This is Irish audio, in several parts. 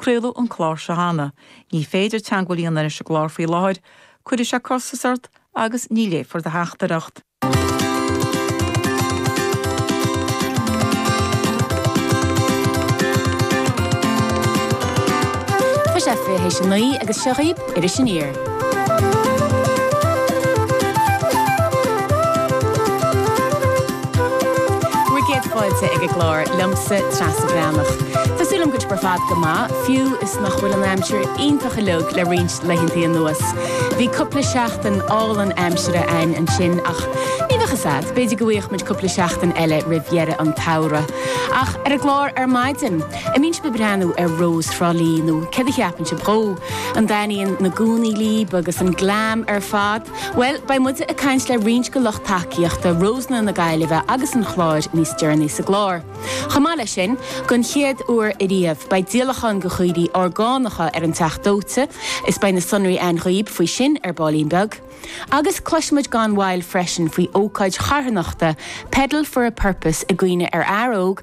Craoladh an clár seo cheana. Ní féidir teagmháil a dhéanamh leis an gclár faoi láthair. Cuirfidh sé costas ort agus ní léifear do theachtaireacht. Tá sé fiche th'éis a naoi agus seo í. Iris Aniar. Bhur gcéad fáilte ag an gclár liomsa, Treasa Bhreathnach. Tá súil agam go bhfuil sibh ar fad go maith, fiú is nach bhfuil an aimsir iontach uiliug le roinnt laethantaí anuas. Bhí cupla seachtain álainn aimsire ann ansin, ach ní bheadh a fhios a'd, b'fhéidir go bhfuigheadh muid cupla seachtain eile roimh dheireadh an tsamhradh. Ach ar an gclár ar maidin. An mbíonn sibh ag breathnú ar Rós Thrá Lí nó céard a cheapann sibh dó? An dtaitníonn na gúnaí líb agus an glam ar fad? Bhuel, beidh muide ag caint le roinnt de lucht tacaíochta Rósanna na Gaillimhe agus an Chláir níos deireanaí sa gclár. Chomh maith leis sin, den chéad uair ariamh, beidh díolachán de chaoirigh orgánacha ar an Teach Dóite is beidh na sonraí a'inn dhaoib faoi sin ar baillín beag. Agus cloisfimid gan mhoill freisin faoi ócáid charthanachta, Pedal for a Purpose, i gcuimhne ar fhear óg,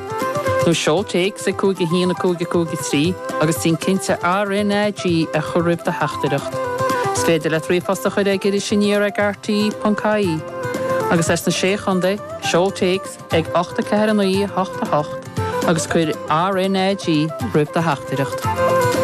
nó seol téacs ag 5 1 5 5 3 agus déan cinnte RNAG a chur roimh do theachtaireacht. Is féidir leat ríomhphost a chur ag Iris Aniar ag RTÉ ponc ie. Agus as na Sé Chontae, seol téacs ag 8 4 9 8 8 agus cuir RNAG roimh do theachtaireacht.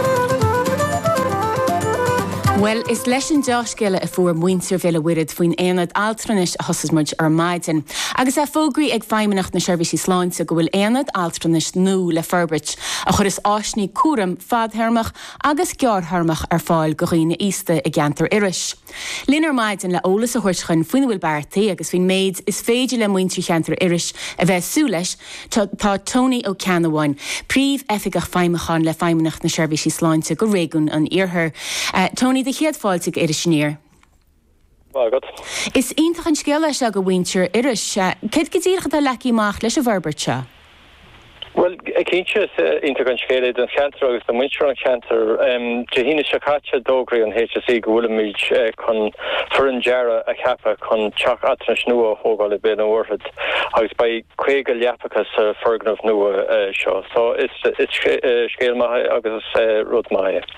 Bhuel, is leis an deá-scéala a fuair muintir Bhéal a' Mhuirthead faoin Aonad Altranais a thosós muid ar maidin. Agus é fógraithe ag Feidhmeannacht na Seirbhísí Sláinte go bhfuil aonad altranais nua le forbairt a chuireas áiseanna cúraim fadthéarmach agus gearrthéarmach ar fáil go dhaoine aosta i gceantar Iorrais. Linn ar maidin le eolas a thabhairt dhúinn faoina bhfuil beartaithe agus faoin méid is féidir le muintir cheantar Iorrais a bheith ag súil leis tá Tony Ó Ceannabháin, Príomhoifigeach Feidhmiúcháin le Feidhmeannacht na Seirbhísí Sláinte go Réigiún an Iarthair. Tony, do chéad fáilte ag Iris Aniar. Maith agat. Is iontach an scéal é seo do mhuintir Iorrais. Céard go díreach atá leagtha amach leis an bhforbairt seo? Bhuel, cinnte is iontach an scéal é don cheantar agus do muintir an cheantair. Dé hAoine seo caite d'fhógraigh an HSE go bhfuilimid chun foireann dearaidh a cheapadh chun teach altranais nua a thógáil i mBéal an Mhuirthead agus beidh 50 leapacha sa foirgneamh nua seo. So is scéal maith é agus is rud maith é.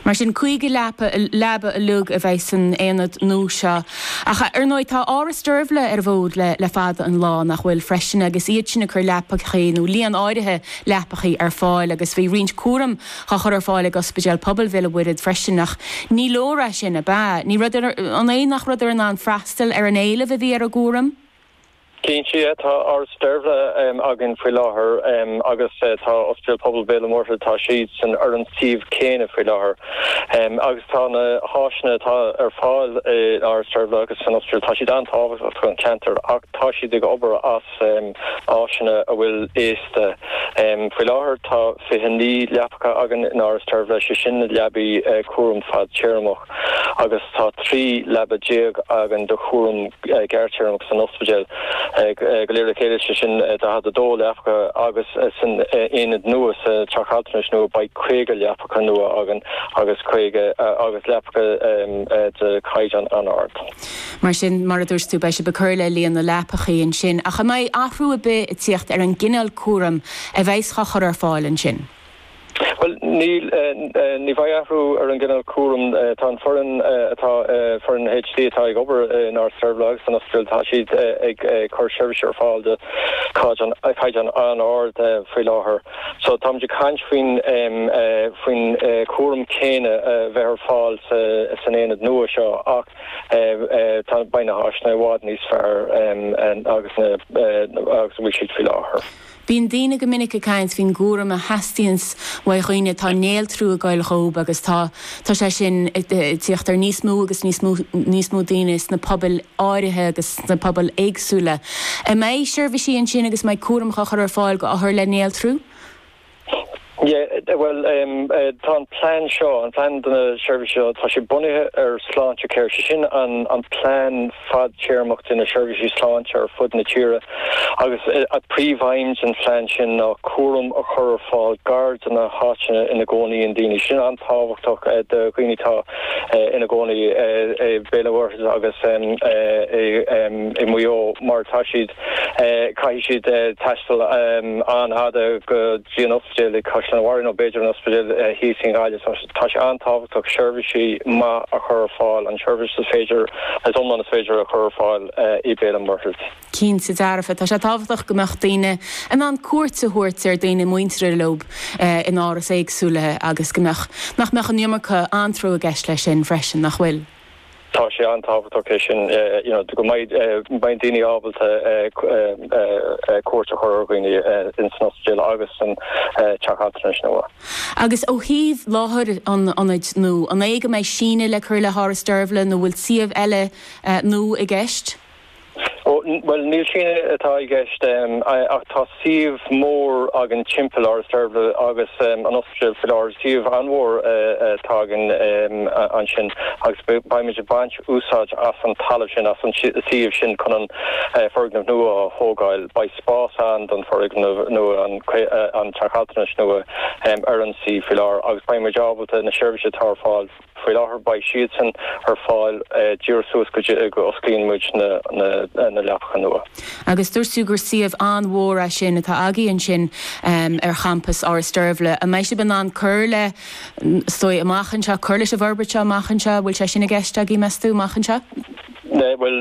Mar sin, caoga leapa, leaba uiliug a bheas san aonad nua seo. Ach, ar ndóigh, tá Áras Deirbhle ar an bhfód le fada an lá, nach bhfuil, freisin, agus iad sin ag cur leapachaí, nó líon áirithe leapachaí, ar fáil, agus bhí roinnt cúraim á chur ar fáil ag Ospidéal Pobail Bhéal an Mhuirthead freisin, ach ní leor é sin, ab ea? Ní raibhadar, an é nach raibhadar in ann freastal ar an éileamh a bhí ar an gcúram? Cinnte tá Áras Deirbhle againn faoi láthair agus tá Ospidéal Pobail Bhéal an Mhuirthead, tá siad san suíomh céanna faoi láthair agus tá na háiseanna atá ar fáil i Áras Deirbhle agus san Ospidéal, tá siad an-tábhachtach don cheantar ach tá siad ag obair as áiseanna a bhfuil aosta. Faoi láthair tá 29 leapacha againn i nÁras Deirbhle, sé sin na leabaí cúram fadtéarmach. agus tá 13 leaba againn do chúram gearrtéarmach san ospidéal. Go léir le chéile, sé sin 42 leapacha agus san aonad nua, sa teach altranais nua, beidh 50 leapacha nua againn caoga agus leapacha de chaighdeán an-ard. Mar sin, mar a dúirt tú, beidh sibh ag cur le líon na leapachaí ansin. Ach an mbeidh athrú ar bith ag tíocht ar an gcineál cúraim a bheidheas dhá chur ar fáil ansin? Bhuel ní, ní bheidh athrú ar an gcineál cúraim. Tá an foireann atá, foireann HSE atá ag obair in Áras Deirbhle agus san Ospidéal tá siad ag cur seirbhís ar fáil de chaighdeán an-ard faoi láthair. So táimid ag caint faoin, faoin chúram céanna a bheith ar fáil san aonad nua seo ach tá, beidh na háiseanna i bhfad níos fearr agus ná, agus a bhfuil siad faoi láthair. Bíonn daoine go minic ag caint faoin gcúram a theastaíonns ó dhaoine atá néaltrú ag goil dhóib agus tá tá sé sin ag tíocht ar níos mó agus níos mó daoine sna pobail áirithe agus sna pobail éagsúla. An mbeidh seirbhisí ansin agus an mbeidh cúram á chur ar fáil dho othair le néaltrú? Yeah, bhuel, tá an plean seo, an plean do na seirbhísí seo, tá sé bunaithe ar Sláintecare, sé sin an plean fadtéarmach do na seirbhísí sláinte ar fud na tíre agus an príomhaidhm den phlean sin ná cúram a chur ar fáil gar do na háiteanna ina gcónaíonn daoine. Sin an-tábhachtach do dhaoine atá ina gcónaí i Béal an Mhuirthead agus i Maigh Eo mar tá siad, caithfidh siad taisteal an-fhada go. dtí an ospidéal i gCaisleán an Bharraigh, nó b'fhéidir an ospidéal thíos in Gaillimh, tá sé an-tábhachtach seirbhísí maith a chur ar fáil, an tseirbhís is féidir, is iomlán is féidir a chur ar fáil i Béal an Mhuirthead. Cinnte dearfa, tá sé tábhachtach go mbeadh daoine in ann cuairt a thabhairt ar daoine muinteartha leob in árais éagsúla agus go mbeadh, nach mbeadh an iomarca anró i gceist leis sin freisin, nach bhfuil? Tá sé an-tábhachtach sin you know go mbeidh daoine ábalta cuairt a chur ar dhaoine san ospidéal agus san teach altranais nua. Agus ó thaobh láthair an ionaid nua an é go mbeidh síneadh le cur le hÁras Deirbhle nó bhfuil suíomh eile nua i gceist? Bhuel, ní sin é atá i gceist ach tá suíomh mór againn timpeall Áras Deirbhle agus an ospidéal sa lár, suíomh an-mhór atá againn ansin agus beidh muid ag baint úsáid as an talamh sin, as an suíomh sin chun an foirgneamh nua a thógáil. Beidh spás ann don foirgneamh nua, an teach altranais nua ar an suíomh faoi láthair agus beidh muid ábalta na seirbhísí atá ar fáil, Faoi láthair beidh siadsan ar fáil díreach suas go dtí go osclaíonn muid na leapacha nua. Agus dúirt tú gur suíomh an-mhór é sin atá agaibh ansin ar champas Áras Deirbhle. An mbeidh sibh in ann cur le, is dóigh, amach anseo, cur leis an bhforbairt seo amach anseo? An bhfuil sé sin i gceist agaibh, meas tú, amach anseo? Bhuel,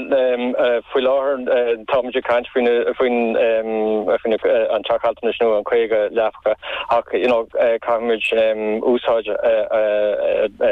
faoi láthair tá muid ag caint faoin an teach altranais nua, an caoga leapacha, ach you know caithfidh muid úsáid a